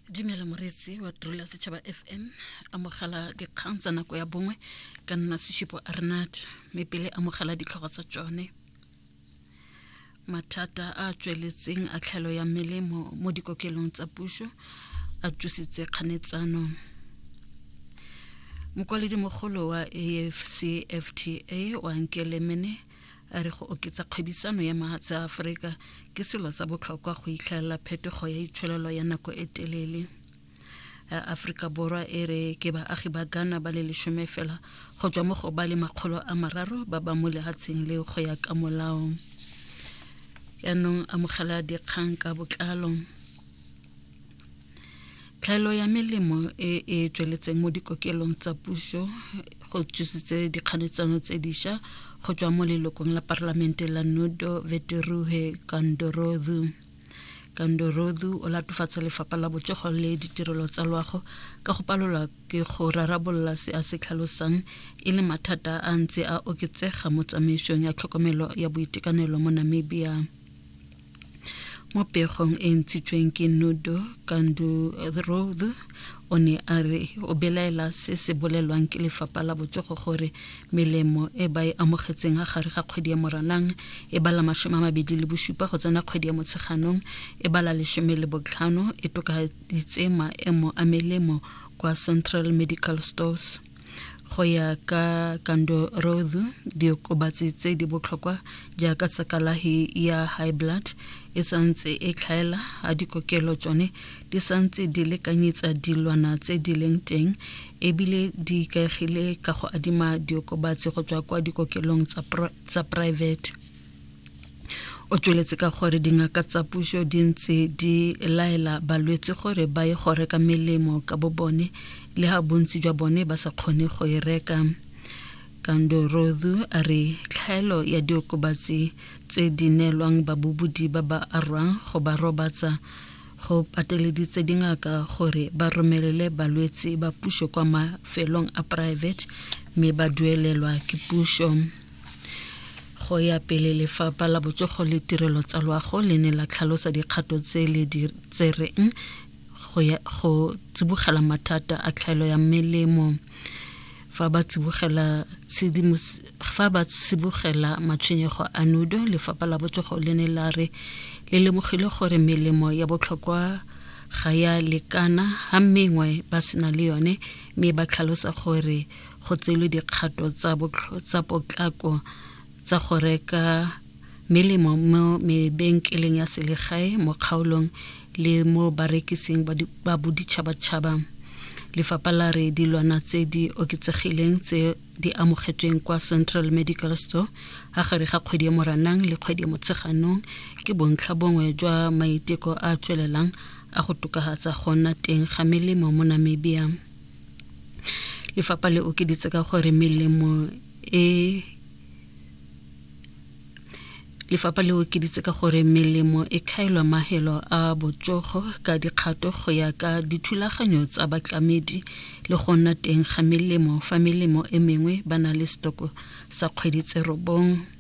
dumela moreetsi wa trola setšhaba fm amogela dikgang tsa nako ya bongwe ka nna seshipo arnat mme pele amogela ditlhogo tsa tsone mathata a tsweletseng a tlhaelo ya melemo mo dikokelong tsa puso a tsositse kganetsano mokwaledi mogolo wa afcfta wa nkelemene a re go oketsa kgwebisano ya mahatshe a aforika ke selo sa botlhokwa go itlhelela phetogo ya itsholelo ya nako e telele aforika borwa e re ke baagi ba ghana ba le lesome fela go tswa mo go ba le makgolo a mararo ba ba mo lehatsheng le go ya ka molao yaanong amogela dikgang ka botlalo tlhaelo ya melemo e e tsweletseng mo dikokelong tsa puso go tsositse dikganetsano tse diša go tswa mo lelokong la parlamente la nudo veteruhe kandorodu kandorodu o latofatsa lefapha la botsogo le ditirelo tsa loago ka go palelwa ke go rarabolola se a se tlhalosang e le mathata a ntse a oketsega mo tsamaisong ya tlhokomelo ya boitekanelo mo namibia mo pegong e ntshitsweng ke nudo kandurod o ne a re o belaela se se bolelwang ke lefapha la botsogo gore melemo e ba e amogetseng a gare ga kgwedi ya moranang e bala masome a mabedi le bosupa go tsena kgwedi ya motsheganong e bala lesome le botlhano e tokaditse maemo a melemo kwa central medical stores go ya ka kando rozu diokobatsi tse di botlhokwa jaaka tsa kalahi ya high blood e santse e tlhaela a dikokelo tsone di santse di lekanyetsa dilwana tse di leng teng ebile di ikaegile ka go adima diokobatsi go tswa kwa dikokelong tsa private o tsweletse ka gore dingaka tsa puso di ntse di laela balwetse gore ba ye go reka melemo ka bo bone le ga bontsi jwa bone ba sa kgone go e reka kandorozu a re tlhaelo ya diokobatsi tse di neelwang babobodi ba ba arwang go ba robatsa go pateleditse dingaka gore ba romelele balwetse ba puso kwa mafelong a private mme ba duelelwa ke puso Go ya pele lefapha la botsogo le tirelo tsa loago le ne la tlhalosa dikgato tse le di tsereng go ya go tsibogela mathata a tlhaelo ya melemo fa ba tsibogela fa ba tsibogela matshwenyego a nudo lefapha la botsogo le ne la re le lemogile gore melemo ya botlhokwa ga ya lekana ga mengwe ba sena le yone mme ba tlhalosa gore go tseelwe dikgato tsa, tsa potlako tsa go reka melemo mo mebenkeleng ya selegae mo kgaolong le mo barekising ba boditšhabatšhaba lefapha la re dilwana tse di oketsegileng tse di amogetsweng kwa central medical store a gare ga kgwedi ya moranang le kgwedi ya motsheganong ke bontlha bongwe jwa maiteko a tswelelang a go tokafatsa go nna teng ga melemo mo namibia lefapha le okeditse ka gore melemo e lefapha le okeditse ka gore melemo e kgaelwa mahelo a botsogo ka dikgato go ya ka dithulaganyo tsa batlamedi le go nna teng ga melemo fa melemo e mengwe ba na le setoko sa kgwedi tse robong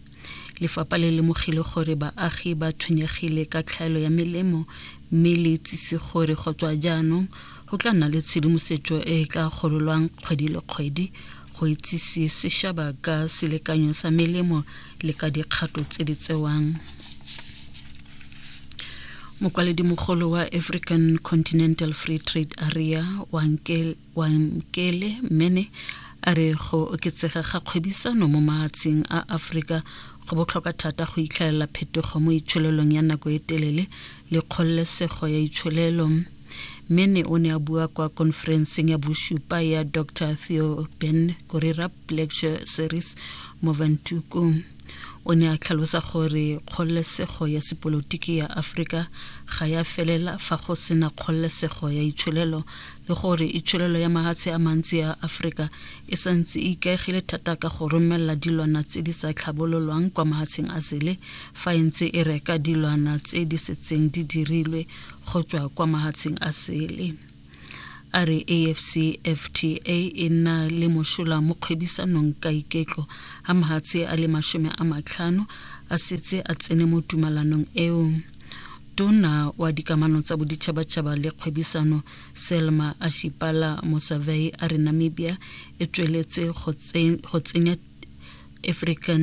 Lefapha le lemogile gore baagi ba tshwenyegile ka tlhaelo ya melemo mme le itsise gore go tswa jaanong go tla nna le tshedimosetso e e ka gololwang kgwedi le kgwedi go itsise sešaba ka selekanyo sa melemo le ka dikgato tse di tsewang mokwaledimogolo wa african continental free trade area wa Wamkele Mene a re go oketsega ga kgwebisano mo maatsheng a Afrika go botlhokwa thata go itlhaelela phetogo mo itsholelong ya nako e telele le kgololesego ya itsholelo. Mene o ne a bua kwa konferenseng ya bosupa ya Dr Theo Ben Korirap Lecture Series mo Vantuku. O ne a tlhalosa gore kgololesego ya sepolotiki ya Afrika ga ya felela fa go sena kgololesego ya itsholelo le gore itsholelo ya mahatshe a mantsi ya Afrika e santse e ikaegile thata ka go romelela dilwana tse di sa tlhabololwang kwa mahatsheng a sele fa e ntse e reka dilwana tse di setseng di dirilwe go tswa kwa mahatsheng a sele a re afcfta e nna le mošola mo kgwebisanong ka iketlo ga mahatshe a le masome a matlhano a setse a tsene mo tumalanong eo Tona wa dikamano tsa boditšhabatšhaba le kgwebisano Selma Ashipala Mosavei a re Namibia e tsweletse go tsenya African